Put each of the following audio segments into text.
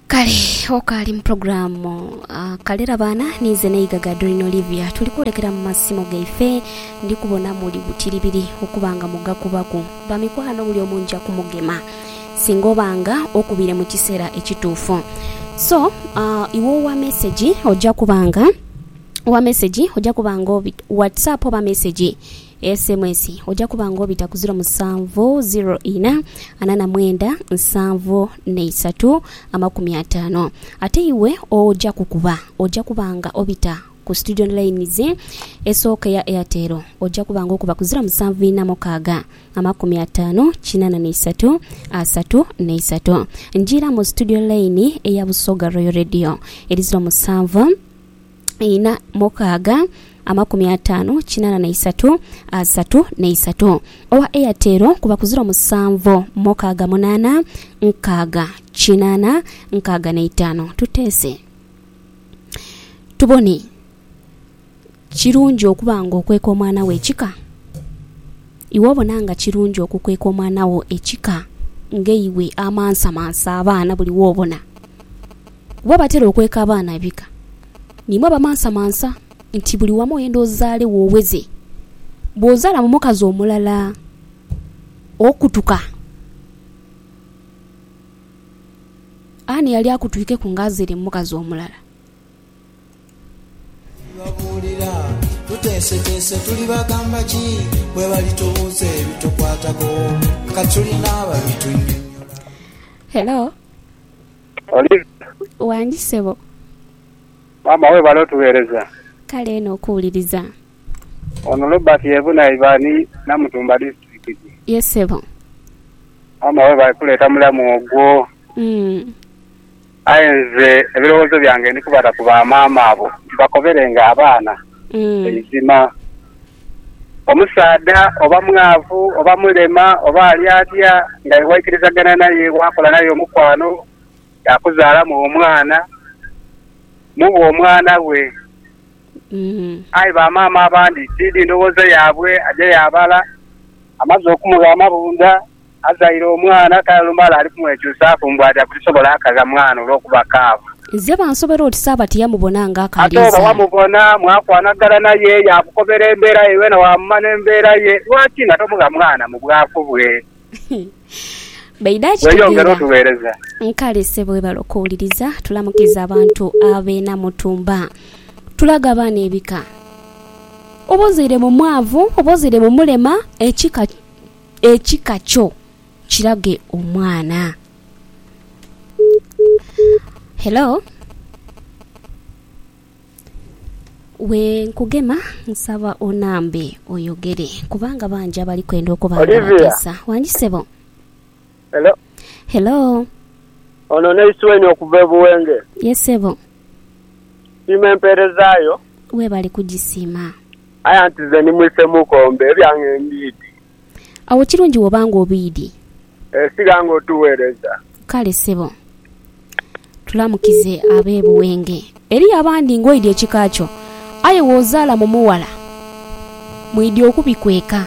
kale okaali mu pulogulaamu ah, kalera baana niize n'eigaga doreen olivia tuli kwolekera mu masimo gaife ndi kubona muli butiribiri okuba nga mugakubaku bamikwano buli omu nja kumugema singa oba nga okubire mu kiseera ekituufu so ah, iwe owa mesegi oja kuba nga owa mesegi oja kuba nga obi whatsapp oba mesegi Sms oja kuba nga obita ku ziro musanvu ziro ina ana na mwenda nsanvu na isatu amakumi ataano. Ate iwe oja kukuba oja kuba nga obita ku Student Lines esooka eya Airtel oja kuba nga okuba ku ziro musanvu ina mukaaga amakumi ataano kinana na isatu asatu na isatu. Njiira mu Studio Line eya Busoga Royal Radio eri ziro musanvu. ina mukaaga amakumi ataanu kinaana na isatu asatu na isatu. Owa Airtel kuba ku ziro musanvu mukaaga munaana nkaaga kinaana nkaaga na itaanu. Tuteese tubone kirungi okuba nga okweka omwana wo ekika? Iwe obona nga kirungi okukweka omwana wo ekika ng'eiwe amansamansa abaana buli wobona? Bwe batera okweka abaana abika, ni mwaba mansamansa nti buli wamu oyenda ozaale woweze. Bw'ozaala mu mukazi omulala, okutuka. Ani yali akutwikeku ng'azaire mu mukazi omulala? Tulibabuulira tuteeseteese, tulibagamba ki bwe balitubuuza ebitukwatako nga tulina ababitunyonyola? Hello. Olivia. Wangi ssebo. Maama webale otughereza. Kale eno okuwuliriza. Ono Robert yebuna iba ni Namutumba disiturikiti. Yes ssebo. Maama webale kuleeta mulamu ogwo. Umm. Aye nze ebirowozo byange ndikubata ku ba maama abo nti bakoberenga abaana. Eizima, omusaadha oba mwaavu, oba mulema, oba ali atya, nga iwe waikirizagana naye, waakola naye omukwano, yaakuzaalamu omwana, muwe omwana we. Aye bamaama abandi tiidhi ndhowooza yaabwe, aja yaabala, amaze okumugha amabundha. Azaire omwana talumala ali kumwekyusaaku mbu aja kulisobola akagha mwana olw'okuba kaavu. Nze bansobera oti Sabati yamubona nga akaali Ate oba izaale. wamubona mwakwanagana naye yaakukobera embeera ye yoona waamumanya embeera ye, lwaki nga tomugha mwana mu bwaku bwe? Baidha Weeyongere akitegeera. otuweereza. Kale ssebo webale okuwuliriza. Tulamukiza abantu ab'e Namutumba. Tulage abaana ebika. Oba ozaire mu mwavu, oba ozaire mu mulema, ekika. ekika kyo kirage omwana. Hello wenkugema nsaba onambe oyogere kubanga bangi abali kwenda okuba nga Olivia. bateesa wangi sebo. Hello. Hello Ono Nice Wayne okuva e Buwenge. yes sebo Siima empeereza yo. webale kugisiima. Aye anti nze ndi mwise mukombe, ebyange mbiidi. Awo kirungi woba nga obiidi. Eeh sigha nga otuwereza. Kale ssebo. Tulamukize abe Buwenge. Eriyo abandi nga oidhi ekika kyo aye wozaala mu mughala mwidhi okubikweka.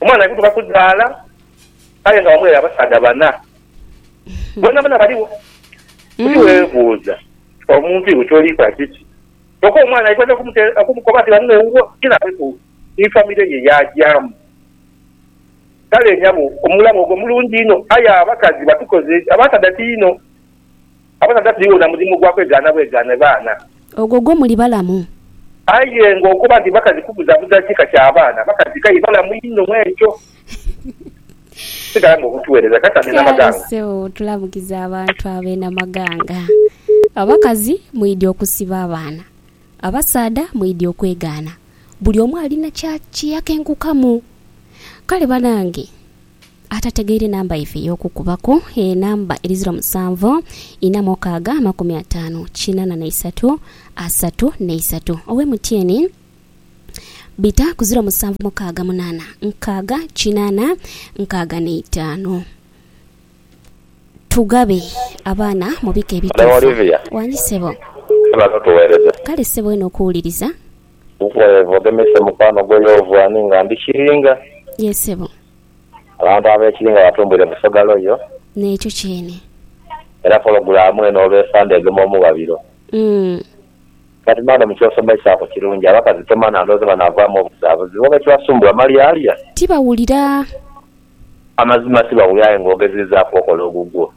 Omwana aidhuka kuzaala aye nga wamughaire abasaadha bana. Boonaboona baligho. Buli webuuza omuntu iwe kyoli kola kiki? Kyoka omwana aidha dha okumukoba nti ghaligho ewuwo ye nabeku ni famire ye yagyamu. Kale nyabo omulabe ogwo mulungi inho aye abakazi batukoze, abasaadha ti inho. Abasaadha tiriwo na mulimu gwa kwegaana bwegaane baana. Ogwo gwo muli balamu. Aye ng'okuba nti bakazi kubuzabuza kika kya baana, bakazi kaye balamu inho mw'ekyo. Sigala ng'okutuweereza Kasadha e Namaganga. Kale sebo tulamukiza abantu abo e Namaganga. Abakazi mwidhi okusiba abaana. Abasaadha mwidhi okwegaana. Buli omu alina kye yakenkukamu. Kale banange. Atategeire namba ife ey'okukubaku, e namba eri ziro musanvu ina mukaaga amakumi ataanu kinana na isatu asatu na isatu owe mutyeni bita ku ziro musanvu mukaaga munana nkaaga kinana nkaaga na itaanu Tugabe abaana mu bika Madam ebituufu. Olivia. Wangi ssebo. Webale otuwereza. Kale ssebo eno okuwuliriza. Weva ogemese mukwano gwo yova ani nga ndi kiringa. Yee ssebo. Abantu abekiri nga batumbwire Busoga Royal. N'ekyo kyene. Era pologulaamu eno olw'esaa ndhegema omughabiro. Umm. But madam ky'osomeisaaku kirungi, abakazi tomanha ndhoozi nga naavaamu obuzaabuzi. Booba ekibasumbuwa malyalya. Tibawulira. Amazima tibawulira aye ng'ogezezaaku okola ogugwo.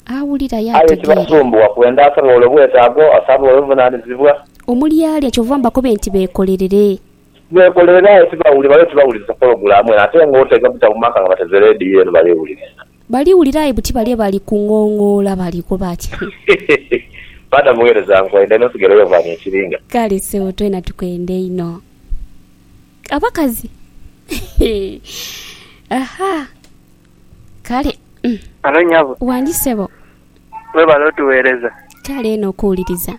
Awulira aye ategeera. Aye ekibasumbuwa kwenda asabe olwo bwetaago, asabe olwo buvunaanizibwa. Omulyalya kyova mbakobe nti beekolerere. Nekolere naye tibawulira bale tibawulirisa pologulamu eno ate nga otega buta mumaka nga bateze leediyo eno bale wulirisa. Bali wulira aye buti bale bali kungongoola bali koba ki hoo. Paata mughereza nkwenda inho sigere yo vani ekiringa. Kale ssebo twena tukwenda inho abakazi eehh ahaa kale umm. Halo nyabo. Wangi ssebo. Webale otuwereza. Kale eno okuwuliriza.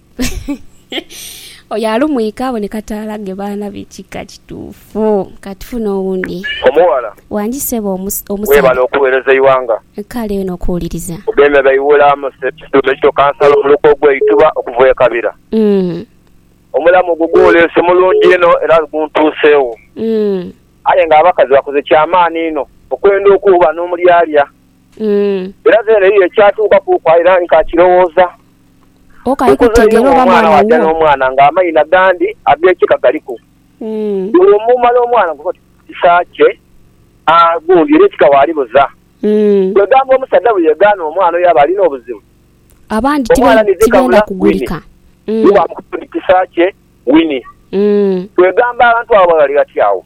Oyo alumwika aboneka taalage baana be kika kituufu. Ka tufune owundi. Omughala. Wangi sebo omusaadha. Webale okuwereza eighanga. Kale eno okuwuliriza. Ogemye Baiwula Amosep Kituume Kito Kansala Omuluka ogwe Ituba okuva e Kabira. Omulamu ogwo gwoleese mulungi inho era guntuuseegho. Aye nga abakazi bakoze kya maani inho okwenda okuwuba n'omulyalya Umm. Era then eyo ekyatuuka kuku aye era nkakirowooza. Ok aye Nkoze kutegeera inho oba omwana mwana waja wuwo. nomwana nga amaina gandi agekika galiku. Umm. Bwomumala omwana nga oti mukisa kye aah gundi era ekika walibuza. Umm. Kwegamba omusaja bweyegaana omwana oyo aba alina obuzibu. Abandi tibe Omwana nize tibenda kabula Winnie. kugulika. Umm. Nibamukoba oti kisa kye Winnie. Umm. Kwegamba abantu abo bali ghati agho.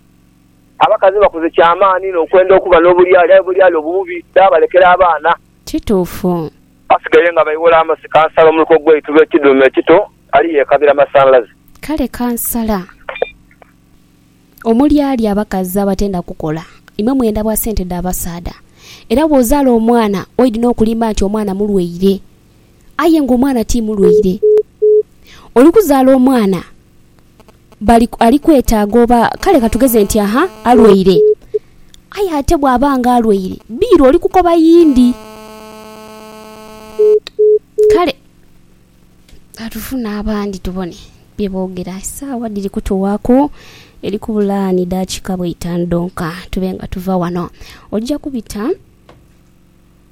Abakazi bakoze kya maani inho okwenda okuba n'obulyali, aye obulyali obwo bubi, dhaabalekera abaana. Kituufu. Basigaire nga baighola amasi kansala omuluka ogw'eitu lwe kidhuume ekito ali yeekabira masanhalaze. Kale kansala, omulyali abakazi abatenda kukola, imwe mwenda bwa sente dha basaadha. Era bw'ozaala omwana, oidhi n'okulimba nti omwana mulwaire. aye nga omwana ti mulwaire. Oli kuzaala omwana bali, ali kwetaaga oba kale ka tugeze nti aha, alwaire. Aye ate bw'aba nga alwaire, biiru oli kukoba yindi. Kale ka tufune abandi tubone bye boogera. Esaawa dhiri kutuwaaku, eri kubula ni daakika bweitaanu dhonka tube nga tuva wano. Oja kubita.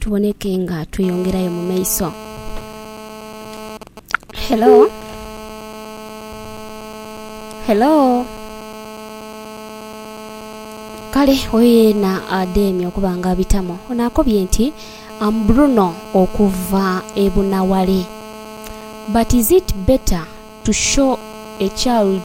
tuboneke nga tweyongerayo mu maiso. Hello? Hello? Kale oyo yena adheemye okuba nga abitamu ono akobye nti am Bruno okuva e Bunaware but is it better to show a child